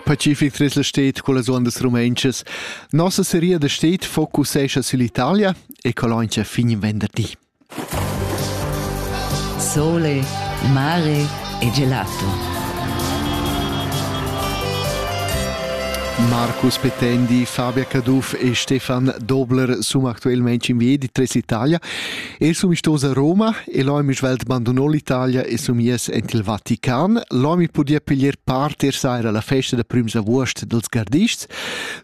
Pacific tres la stet cullas ondas rumentschas. Nossa seria da stet focusescha sull'Italia e coloncia fin venderdi. Sole, mare e gelato. Marcus Petendi, Fabia Caduff e Stefan Dobler sono attualmente in via di Tres Italia Eu sun istosa a Roma e l'ho amic svelt bandunò l'Italia e sun mies ent il Vatican. L'ho mi pudì piglier part er saira alla festa da prüms avuost dels gardists.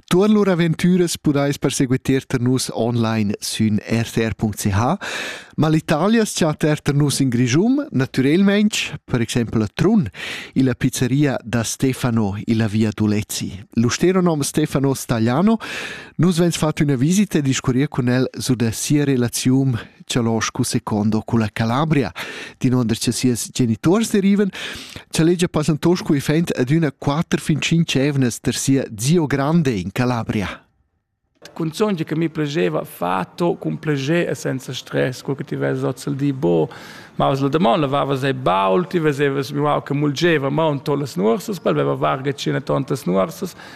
Tuorn lur aventüras pudais perseguiter tar nus online sün rtr.ch, ma l'Italia s-chat er tar nus in Grischun, natürelmaing, per exempel a Trun, illa pizzeria da Stefano, illa via Dulezi. Lo stero nom Stefano Stagliano Nus vegns fatg üna visita e discurrir cun el su da sia relaziun Cialoscu secondo culla Calabria, din onda cha sias genitors derivan, cha legia passantoscu e fent ad üna quatter fin cinc evnas der sia zio grande in Calabria. Cunzun che mi plegeva fatto cun pleger e senza stress, quel che ti vezi ozzel di bo, ma was la domanda vava sei baul, ti vesevas mi wow che mulgeva ma un tolles nuorsas, pal veva varga cina tontas nuorsas,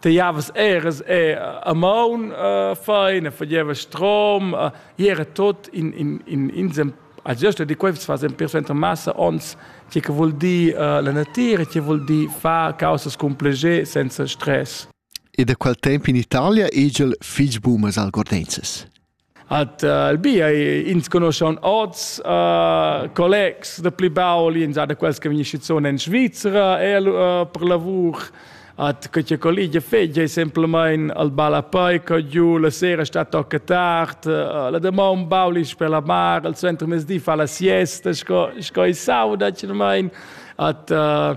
te javas eras e a maun uh, fein e fagieva strom uh, era tot in in in in a giusto di quei fas in perso enter massa ons che che vuol dir uh, la natura che vuol dir fa causas complege senza stress e da qual tempo in Italia egel fich bumas algordenses At uh, Albia ins conoschan oz uh, collegs da pli baul, ins ha da quels che vegn schizuon en Svizzera e uh, per lavur at quella colligia feggia semplamain al balapoi co giu la sera sta tocca tard uh, la demon baulis per la mar al centro mesdi fa la siesta sco sco i sauda cermain at uh,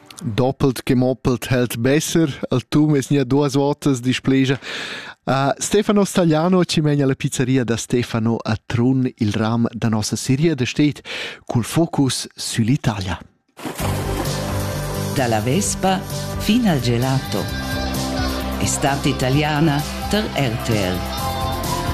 Doppelt che moppelt held besser, al Tum es gnà duos votas displegia. Uh, Stefano Stagliano ci megna la pizzeria da Stefano a Trun, il ram da nossa seria da stet cul focus sull'Italia. Dalla Vespa fin al gelato. Estate italiana per RTL.